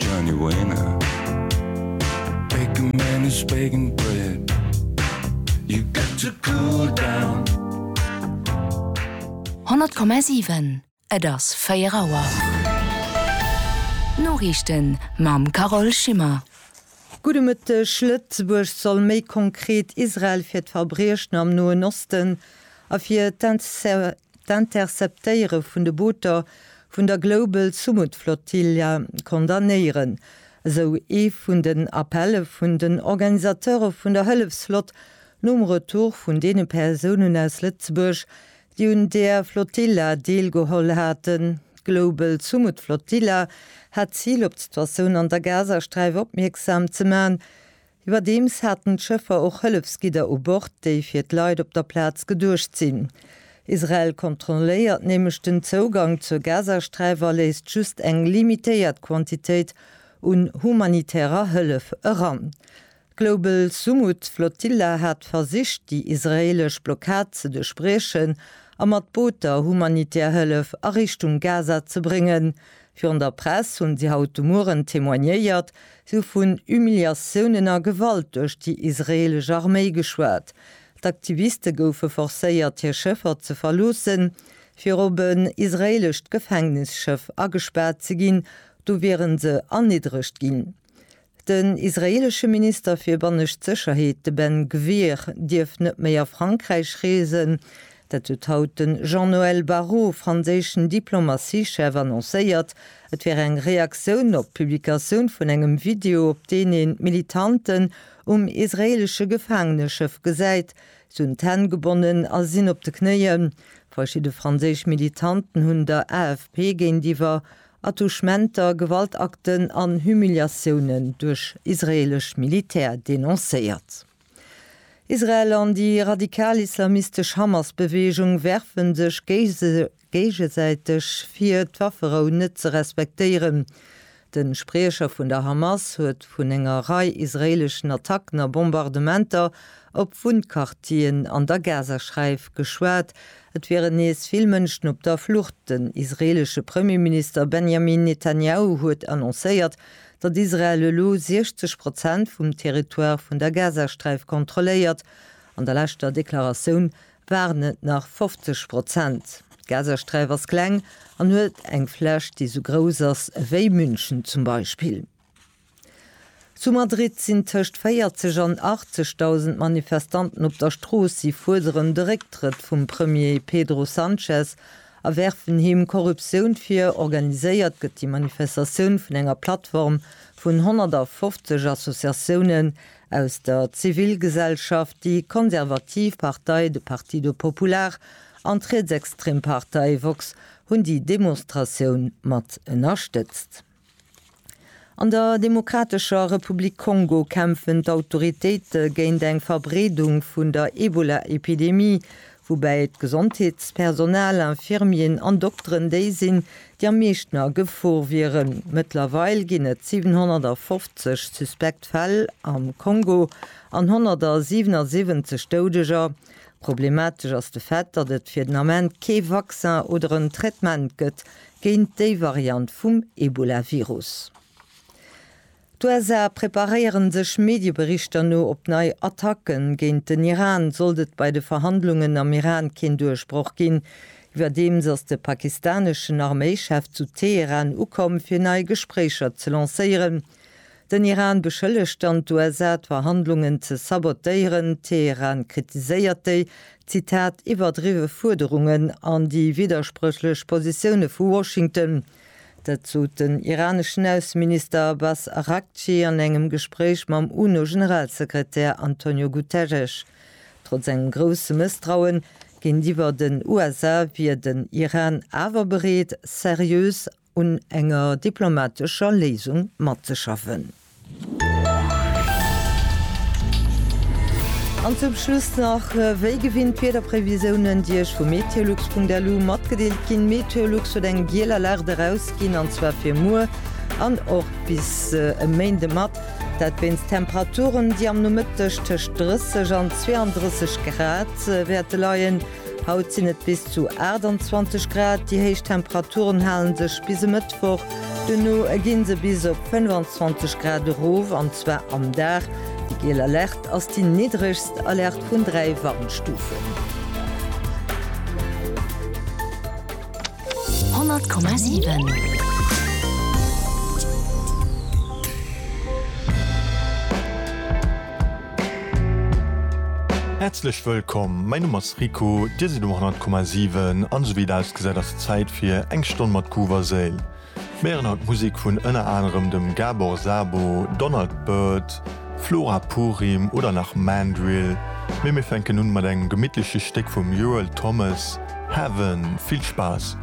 Johnny Wayne Bacon man is bacon bread You got to cool down 100,7 Et ass 4 Auer. D'Noriichten mam Carole Schimmer. Gudde Mëtteg, Lëtzebuerg soll méi konkret Israel fir d'Verbriechen am Noen Osten a fir d'Interdiktioun vun Waffenexporter ënnerstëtzen. d'Interceptéiere vun de Booter vun der Global Sumud Flotilla condamnéieren, esou ee vun den Appelle vun den Organisateure vun der Hëllefsflott nom Retour vun deene Persounen aus Lëtzebuerg, déi un där Flotilla deelgeholl haten. D'Global Sumud Flotilla hat d'Zil, op d'Situatioun an der Gazasträif opmierksam ze man, Iwwerdeems haten d'Schëffer och Hëllefsgidder u Bord, déi fir d'Leit op der Plaz geduecht sinn. Israel kontrolléiert nämlech den Zougang zur Gazasträif a léisst just eng limitéiert Quantitéit un humanitärer Hëllef eran. D'Global Sumud Flotilla hat versicht, déi israeelesch Blockad ze duerchbriechen a mat Booter humanitär Hëllef a Richtung Gaza ze bréngen, Virun der Press hunn si haut de Mueren témoignéiert. Si hu vun Humiliatiounen a Gewalt duerch déi israeelesch Arméi geschwat. D'Aktiviste goufe forcéiert hir Schëffer ze verloossen, fir op en israeelescht Gefängnisschëff agespaart ze ginn, do wieren se erniddregt ginn. Den israeelesche Minister fir bannescht Sécherheet, de Ben Gvir, dierf net méi a Frankräich reesen. Dat huet haut de Jean-Noël Barrot, franséischen Diplomatiechef, annoncéiert. Et wär eng Reaktioun op d'Publikatioun vun engem Video, op deen een d'Militanten um israeelesche Gefaangeneschëff gesäit. Si hunn d'Hänn gebonnen a sinn op de Knéien. Verschidde franséisch Militanten hunn der AFP géintiwwer Attouchementer, Gewaltakten an Humiliatiounen duerch israeelesch Militär denoncéiert. Israel an déi radikal-islamistesch Hamas-Beweegung werfen sech géigesäiteg vir, d'Wafferou net ze respektéieren. De Spriecher vun der Hamas huet vun enger Rei israeeleschen Attacken a Bombardementer op Wunnquartieren an der Gazasträif geschwat, Et wieren nees vill Mënschen op der Flucht. Den israeelesche Premierminister Benjamin Netanjahu huet annoncéiert, datt Israel elo 60 Prozent vum Territoire vun der Gazasträif kontrolléiert. An der leschter Deklaratioun waren et nach 50 Prozent. D'Gazasträif ass kleng an huet eng Fläch, déi sou grouss ass ewéi München zum Beispill. Zu Madrid sinn tëscht 40 an 80.000 Manifestanten op der Strooss. Si fuerderen de Récktrëtt vum Premier Pedro Sanchez a werfen him Korruptioun vir. Organiséiert gëtt déi Manifestatioun vun enger Plattform vun 150 Associatiounen aus der Zivilgesellschaft, déi konservativ Partei, de Partido Popular, an d'rietsextrem Partei Vox hunn déi Demonstratioun mat ënnerstëtzt. An der Demokratescher Republik Kongo kämpfen d'Autoritéite géint eng Verbreedung vun der Ebola-Epidemie, woubäi d'Gesondheetspersonal, Infirmieren an Dokteren déi sinn, déi am meeschten a Gefor wieren. Mëttlerweil ginn et 750 suspekt Fäll am Kongo an 177 Doudeger. Problematesch ass de Fait, datt et fir den Ament kee Vaccin oder en Traitement gëtt, géint déi Variant vum Ebolavirus. D'USA preparéieren sech Medieberichter no op nei Attacken géint den Iran, sollt et bei de Verhandlungen am Iran keen Duerchbroch ginn. Iwwerdeems ass de pakistaneschen Arméichef zu Teheran ukomm, fir nei Gespréicher ze lancéieren. Den Iran beschëllegt dann d'USA d'Verhandlungen ze sabotéieren, Teheran kritiséiert déi, Zitat, iwwerdriwwe Fuerderungen an déi widderspréchlech Positioune vu Washington. Dat sot den iraneschen Ausseminister Abbas Araghchi an engem Gespréich mam UNO-Generalsekretär Antonio Guterres. Trotz engem grousse Mësstrauen géintiwwer den USA wier den Iran awer bereet, seriös un enger diplomatescher Léisung matzeschaffen. An zum Schluss nach wéi gewinnt d'Wiederprevisiounen, déi Iech vu meteolux.lu matgedeelt ginn. Meteolux huet eng giel Alerte erausginn, an zwar fir muer an och bis e Méinde mat. Dat wéinst Temperaturen, déi am Nomëtteg tëscht 30 an 32 Grad wäerte leien. Haut sinn et bis zu 28 Grad, déi héich Temperaturen hale sech bis e Mëttwoch, duerno gi se bis op 25 Grad erof, an zwar am Dag. Déi giel Alerte ass déi niddregst Alerte vun dräi Warnstufen. 100,7. Häerzlech wëllkomm, mäin Numm ass Rico, dir sidd um 100,7 an esou wéi et ausgesäit ass et Zäit fir eng Stonn mat Groove a Séil. Mir héieren haut Musek vun ënner anerem dem Gabor Szabo, Donald Byrd, Flora Purim oder nach Mandrill, mee mir fänken un mat engem gemittleche Stéck vum Euell Thomas, Heaven. Vill Spaass!